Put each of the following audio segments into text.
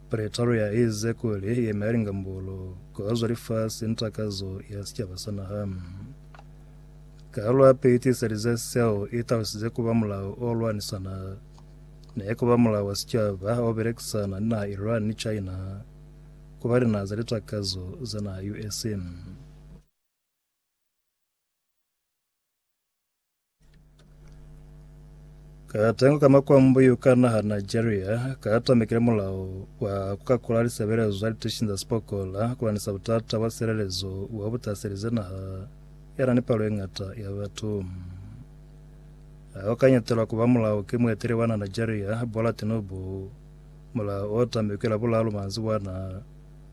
Pretaro ya eze kuli yeme ya lingambolo ku azwa lifasi ni takazo ya sicaba sa naha. Kaalo ya pili tiiselize seo i talusize ku ba mulao o lwanisana ne ku ba mulao wa sicaba o belekisana ni naha Iran ni China ku ba linaha za litakazo za naha US. Katengo ka makwambuyu ka naha Nigeria katamekile mulao wa kukakula lisebelezo za litishin za sipokola kulanisa butata bwa silelezo wa butaselize naha yana ni palo e ngata ya batu. Ao kanyetelwa kuba mulao ke mueteli wa naha Nigeria Bola Tinubu. Mulao o tamekwe la bulalu manzi bwana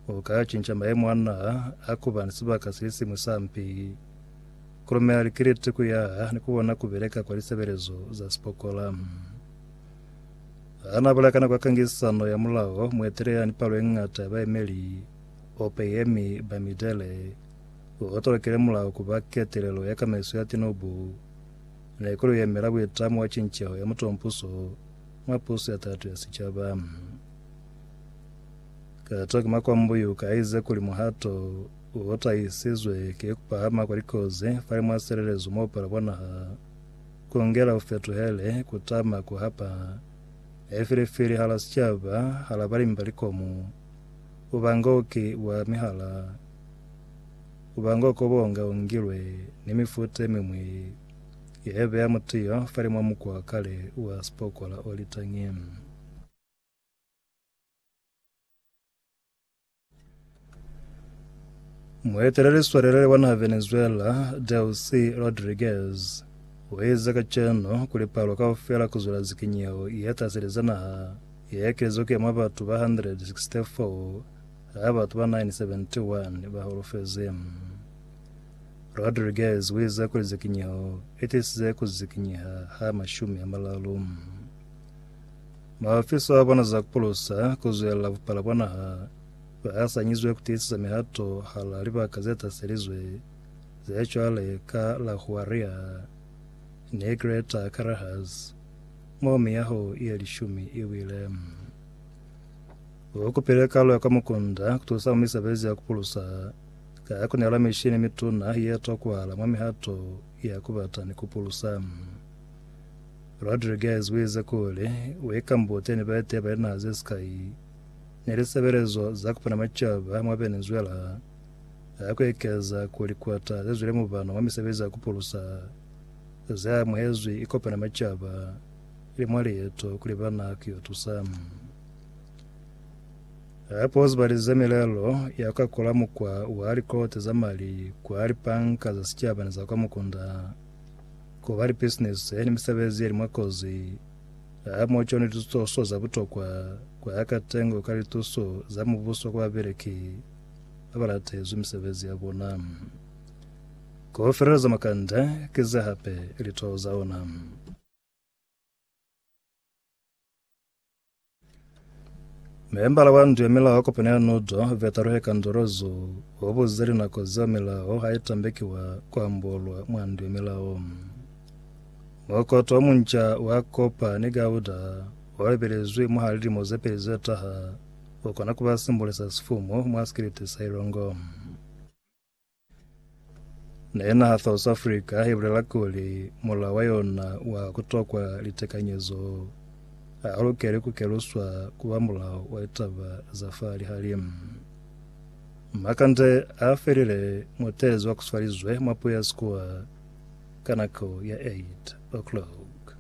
o ka cinca maemo a naha a kuba ni sibaka sili simwi sa mpi. Ku lumela likiliti ku yaha ni ku bona ku beleka kwa lisebelezo za sipokola. Ha n'a bulakana kwa kangisano ya mulao, muetelela ni palo ye ñata ya baemeli, ope ye mi ba mitele, u otolokile mulao ku ba ketelelo ya kamaiso ya tinubu. Ne ku li yemela buitamo wa cinceho ya mutompuso mwa puso ya tatu ya sicaba. Kato ki makwambuyu ka ize kuli muhato Bo tahisizwe ki kupahama kwa likozi fale mwa silelezo mwa bupalo bwa naha, kungela bufetuhele, kutama, kuhapa, haifilifili hala sicaba, hala balimi ba likomo, bubangoki bwa mihala, bubangoko bonga ungilwe, ni mifuta yemimwi ya beya mutiyo fale mwa mukwa wa kale wa sipokola o litangi. Mueteleli swalelele wa naha Venezuela, Delcy Rodriguez, uize kacenu kuli palo kaufela kuzwela zikinyeho ye taseleza naha ye ekelize kuya mwa batu ba 164 ha batu ba 971 ba holofezi. Rodriguez uize kuli zikinyeho itisize kuzikinyeha ha mashumi amalalu. Mahafiso a bona za kupulusa ku zwelela bupala bwa naha ba asanyizwe ku tiisisa mihato hala libaka ze taselizwe ze cwale ka la Huaria ni Greater Carajás, mo miyaho ye lishumi i wile. Bo kupile kalo ya kwa mukunda ku tusa mwa misebezi ya kupulusa ka ku nela mishini mituna ye tokwahala mwa mihato ya ku bata ni ku pulusa. Rodriguez u ize kuli, We Kambote ni baeteyi ba linaha ze sikai ni lisebelezo za ku pona macaba mwa Venezuela ha ku ekeza ku likwata ze zwile mubano wa misebezi ya ku pulusa ze amuhezwi i kopana macaba ili mwa lieto kuli ba na ku yo tusa. Hape u zibalize milelo ya ku akola mukwa wa likote za mali kwa lipanka za sicaba ni za kwa mukunda. ku ba ni bisinisi yani misebezi yali mwa kozi ha mo cone lituso za butokwa kwa ya katengo ka lituso za mubuso kwa babeleki ba ba latezwi misebezi ya bona ku feleleza makanda kize hape litoo za ona. Member wa ndu ya milaho kopano ya Nudo, Vetaruhe Kandorozo, o buzize linako zeo milaho ha i tambeki wa ku ambolwa mwa ndu ya milaho. Mokoto o munca wa kopa ni gauda o ebelezwi mwa lilimo ze peli ze taha, u kona ku ba simbole sa sifumu mwa sikiliti sa Ilongo. Na yena ha South Africa i bulela kuli mulao wa yona wa ku tokwa litekanyezo ha u lukeli ku keluswa ku ba mulao wa litaba za fa lihalimu. Makande a felile muteezi wa kuswalizwe mwa puya sikuwa ka nako ya 8 o'clock.